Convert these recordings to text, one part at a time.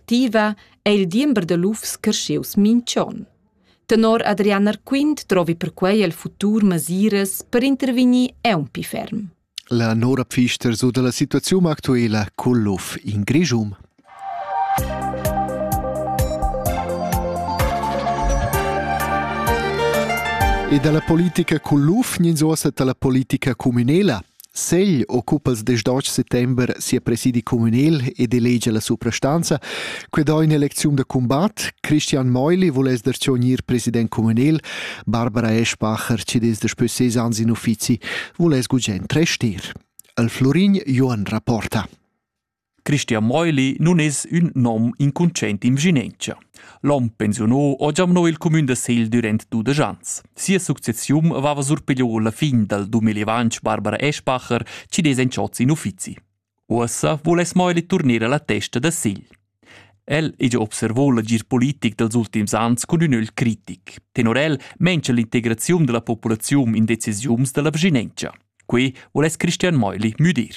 activa è il diember da lufs creschius minch'on. Tenor Adrian Arquint trovi perquei el futur masiras per intervegnir aunc ferm. La Nora Pfister so dalla situaziun actuela col luf in Grischum. E dalla politica col luf gnins ossa dalla politica cuminela. Segl occupa il diesch d'autg settember sia presidi communal ed elegia la suprastanza. Quei dà in'elecziun da combat. Christian Meuli vuless der gnir president communal. Barbara Eschbacher, ci des daspö ses ans in uffizi, vuless gugent restir. El Florin Joan rapporta. Christian Meuli nun es ün nom incunscient in vschinentscha. L'hom pensiunò ho giamnò il cumün da Segl dürant dudesch ans. Sia successiun vava surpigliò la fin dal dumelivantsch Barbara Eschbacher chi dess entschots in uffizi. Uossa voul es Meuli turner alla testa da Segl. El ha già observò l'agir politic dals ultims ans cun ün ögl critic. Tenor el mengia l'integraziun della populaziun in decisiuns della vschinentscha. Quei voless Christian Meuli müdir.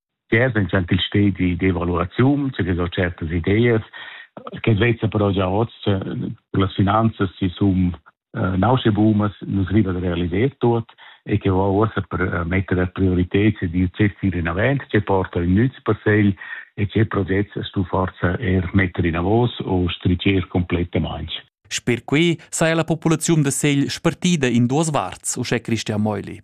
che es ün gentil stedi di evaluaziun, che ho certas ideas, che vezza però già hoz las finanzas si sum eh, nausche bumas nus riva da realiser tuot e che ho uossa per eh, metter a prioritet se di certi rinavent che porta in nüz per segl e che progetts stu forza er metter in avos o stricer completamente. Sper quei saja la populaziun da Segl spartida in duas varts, uschè Christian Meuli.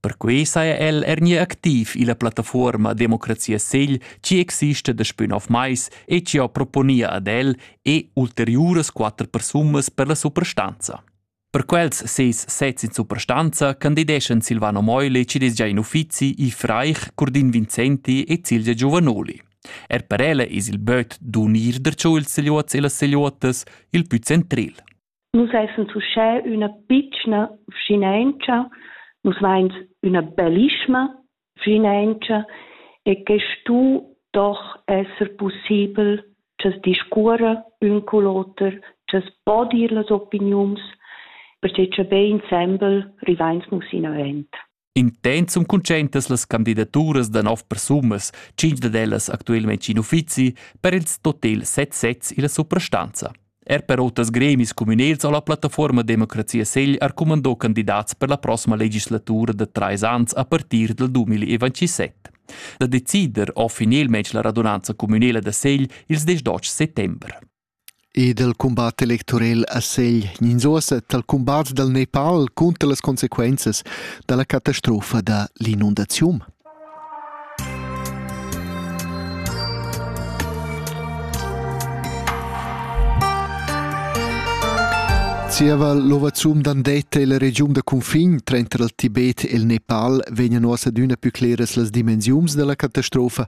Perquei saja el er gnir activ illa plattafuorma Democrazia Segl chi exista daspü nov mais e chi ho proponia ad el e ulteriuras quatter persunas per la suprastanza. Per quels seis sezs in suprastanza candideschan Silvano Meuli, chi desgia in uffizi, i Fraich, Curdin Vincenti e Cilgia Giovanoli. Er per ella es il böt d'unir der Seluots e las Seluotas il pü centril. Nus essan uschè üna pitschna vschinauncha, nus vains üna bellischma vschinauncha e que stu doch esser pussibel cha's discuorra ün cul oter, cha's po dir las opiniuns, perche cha be insembel rivains nus inavant. Intent sun cuntscientas las candidaturas da nov persunas, cinq dad ellas actualmente in uffizi, per ils total set sezs illa suprastanza. Er per oters gremis communals ho la plattaforma Democrazia Segl arcumandò candidats per la prossima legislatura da trais ans a partir dal 2027. Da decider ho finalmente la radunanza communala da Segl ils 10 settember. E dal cumbat electorel a Segl gnins uossa dal cumbat dal Nepal cunter las consequenzas da la catastrofa da l'inundaziun. Zieva l'ovazum d'Andetta e la regiun da cunfin tranter il Tibet e il Nepal vegnan uossa adüna plü cleras las dimensiuns da la catastrofa,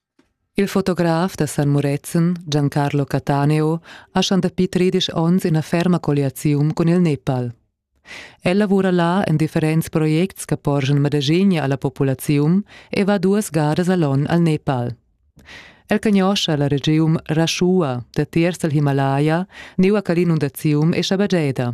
Il fotograf da San Murezzan, Giancarlo Cataneo, ha schon dapi tredisch onns ina ferma colliaziun cun il Nepal. El lavura là en differents projects che porschan medagegna alla populaziun e va duas gadas all'on al Nepal. El cagnoscha la regiun Rashua datiers dal Himalaya, neu a quell'inundaziun e schabagieda.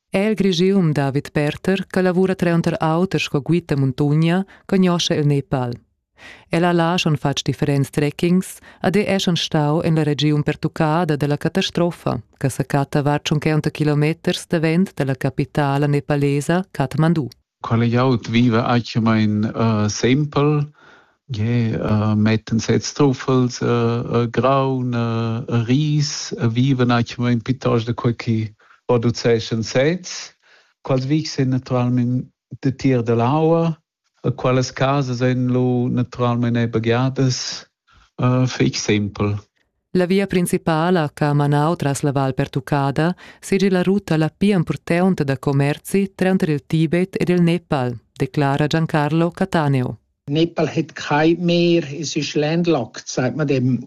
è il Grigium David Perter che lavura tranter auter sco guida muntogna cognosce il Nepal. Ella là schon fatg differents trekkings ad è schon stau en la regiun pertuccada dalla catastrofa che sa catta var 50 kilometers davent dalla capitala nepalesa Kathmandu. Quella glieud viva actualmein uh, sempel, yeah, uh, metten sez truffels, uh, uh, graun, uh, ris, uh, viven actualmein piuttosto da quei che produceschan sez. Quels vics sind naturalmente de tier dell'aua, quelles case sind lo naturalmente begadas uh, fix simpel. La via principala che ha manau tras la val pertuccada seigi la ruta la pia impurtonta da commerzi tranter il Tibet ed il Nepal, declara Giancarlo Cataneo. Nepal hat kein mehr, es ist landlocked, sagt man dem.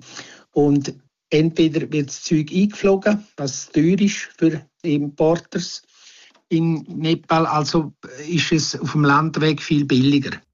Und entweder wird das Zeug eingeflogen, was teuer ist für die Importers. In Nepal also ist es auf dem Land weg viel billiger.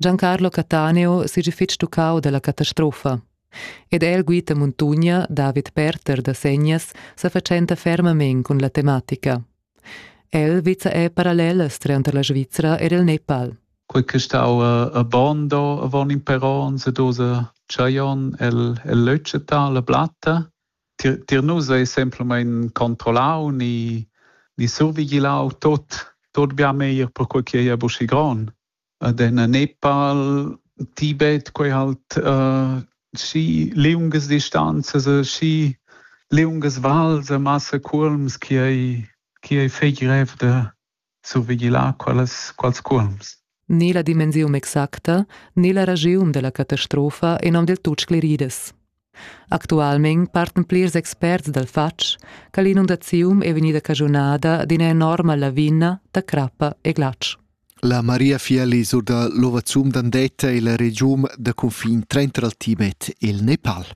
Giancarlo Cattaneo seigi fetg tuccau dalla catastrofa. Ed el guita muntogna David Perter da Segnas sa fatschenta fermamein cun la tematica. El vizza è parallelas tranter la Svizra ed il Nepal. Quei che stau a Bondo avon in per onns ed osa Chayon el el leutscheta la blatta tier, tier nus ei semplamein controllau ni, ni survigilau tot, tot bia meglier perquei ch'ei ei aschi gron. Ed en Nepal, Tibet, quei halt uh, schi liungas distanzas e schi liungas vals e massa cuolms che ei, che ei fei grev de, survigilar quellas, quels cuolms. Né la dimensiun exacta, né la ragiun della catastrofa in hom del tut scleridas. Actualment parten plirs experts dal fatg che l'inundaziun è vegnida cagionada d'ina enorma lavina da crappa e glatsch. La Maria Fieli sur da l'ovazum d'Andetta e la regiun da confin tranter il Tibet e il Nepal.